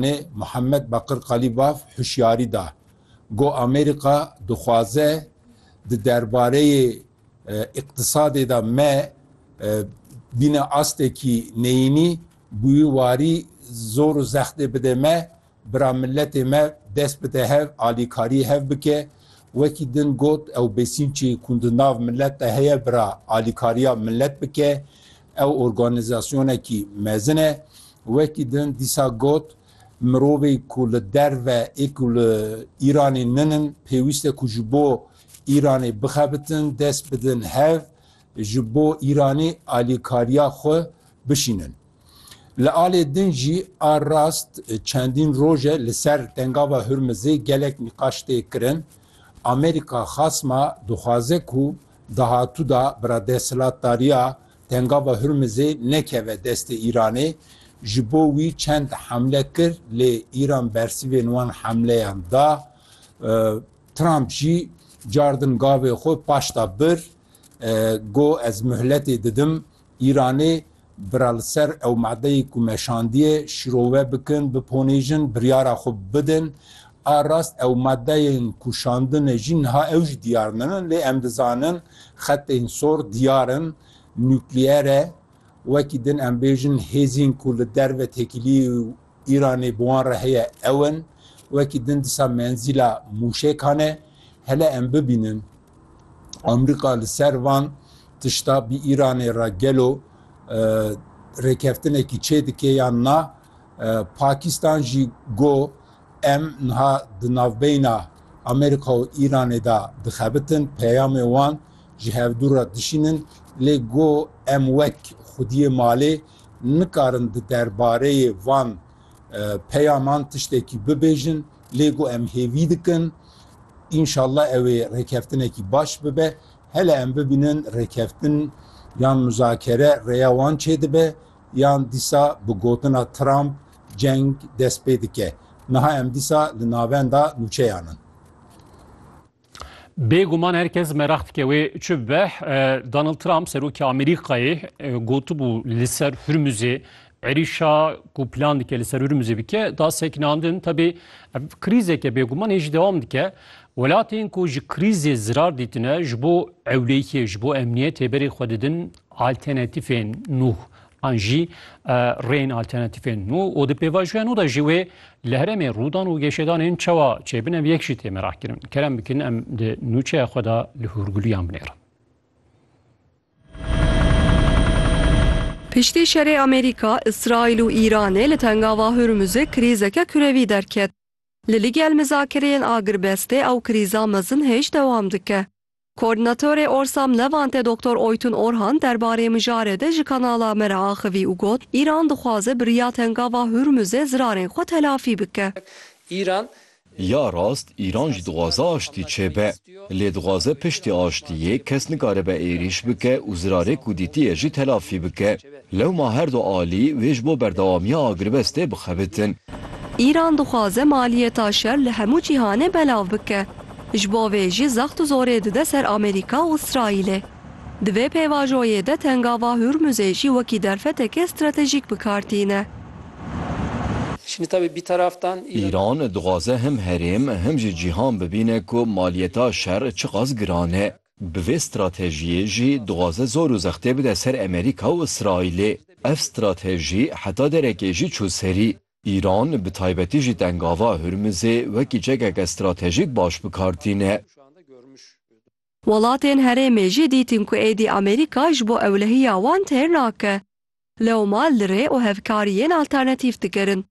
Nê Muhammed Bakir Qalîbaf hişyarî da, got Amerîka dixwaze di derbareyê îqtîsadê de me bîne astekî neyînî, bi wî warî zor û zextê bide me, bira miletê me dest bide hev, alîkariyê hev bike. Wekî din got ew besîncê ku di nav milet de heye bira alîkariya milet bike, Ew organîzasyonekî mezin e. Wekî din dîsa got, Mirovê ku li derve ê ku li Îranê ninin pêwîst e ku ji bo Îranê bixebitin dest bidin hev, ji bo Îranê alîkariya xwe bişînin. Li alê din jî a rast çendîn roj e li ser Tengava Hurmizê gelek nîqaş tê kirin. Amerîka xasma dixwaze ku Dahatû da bira desthilatdariya Tengava Hurmizê nekeve destê Îranê, ji bo wî çend hemle kir lê Îran bersivên wan hemleyan da. Trump jî car din gavê xwe paşda bir, got ez muhletê didim Îranê bira li ser ew madeyê ku me şandiye şirove bikin, biponêjin, biryara xwe bidin. A rast ew madeyên ku şandine jî niha ew jî diyar ninin lê em dizanin xetên sor diyar in, nukleer e. Wekî din em bêjin hêzên ku li derve têkiliyê û Îranê bi wan re heye ew in. Wekî din disa menzîla mûşekan e. Hele em bibînin. Amerîka li ser van tişta bi Îranê re gelo rêkeftinekî çê dike yan na Pakistan jî go em niha di navbeyna Amerîka û Îranê de dixebitin peyamê wan ji hevdû re dişînin lê go em wek xwediyê malê nikarin di derbareyê van peyaman tiştekî bibêjin Lê ku em hêvî dikin înşallah ew ê rêkeftinekî baş bibe. Hele em bibînin rêkeftin yan muzakere rêya wan çêdibe yan dîsa bi gotina Trump ceng dest pê dike. Niha em dîsa li navenda nûçeyan in. Bêguman her kes meraq dike wê çi bibe. Donald Trump serokê Amerîkayê gotibû li ser Hurmuzê êrîşa ku plan dike li ser Hurmuzê bike da sekinandin. Tebê ev krîzeke bêguman hê jî dewam dike. Welatên ku ji krîzê zirar dîtine ji bo ewlehiyê, ji bo emniyetê berê xwe didin alternatîfên nû. an jî rêyên alternatîfên nû û di pêvajoya nû de jî wê li herêmê rûdan û gêşedanên çawa çêbin ev yek jî tê merakkirin. Kerem bikin em di nûçeya xwe de li hûrgulûyan binêrin. Piştî şerê Amerîka, Îsraîl û Îranê li Tengava Hurmuzê krîzeke kurevî derket. Li ligel mizakereyên agirbestê ew krîza mezin hêj dewam dike. Koordînatorê Orsam Levante Doktor Oytun Orhan derbarê mijarê de ji kanala me re axivî û got, Îran dixwaze bi riya Tengava Hurmuzê zirarên xwe telafî bike. Îran. Ya rast Îran jî dixwaze aştî çêbe. Lê dixwaze piştî aştiyê kes nikaribe êrîş bike û zirarê ku dîtiye jî telafî bike. Lewma her du alî wê ji bo berdewamiya agirvestê bixebitin. Îran dixwaze maliyeta şer li hemû cîhanê belav bike, ji bo vê jî zext û zorê dide ser Amerîka û Îsraîlê. Di vê pêvajoyê de Tengava Hûrmûzê jî wekî derfetekê stratejîk bi kar tîne. Îran dixwaze him herêm him jî cîhan bibîne ku maliyeta şer çiqas giran e. Bi vê stratejiyê jî dixwaze zor û zextê bide ser Amerîka û Îsraîlê. Ev stratejî heta derekê jî çû serî. Îran bi taybetî jî Tengava Hurmizê wekî çekeke stratejîk baş bi kar tîne. Welatên herêmê jî dîtin ku êdî Amerîka ji bo ewlehiya wan têr nake. Lewma li rê û hevkariyên alternatîf dikirin.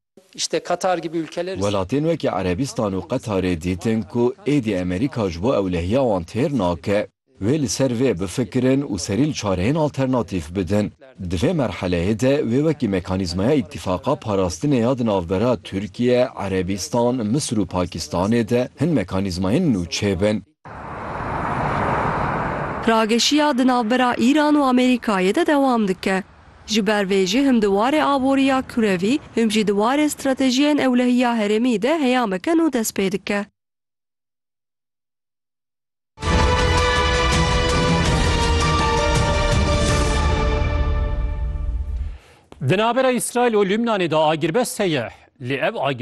Welatên wekî Erebîstan û Qetarê dîtin ku êdî Amerîka ji bo ewlehiya wan têr nake. Wê li ser vê bifikirin û serî li çareyên alternatîf bidin. Di vê merheleyê de wê wekî mekanîzmaya Îtîfaqa Parastinê ya di navbera Tirkiye, Erebîstan, Misir û Pakistanê de hin mekanîzmayên nû çêbin. Rageşiya di navbera Îran û Amerîkayê de dewam dike. Ji ber vê jî him di warê aboriya kurevî, him jî di warê stratejiyên ewlehiya herêmî de heyameke nû dest pê dike. Di navbera Îsraîl û Lubnanê de agirbest heye, lê ev agir.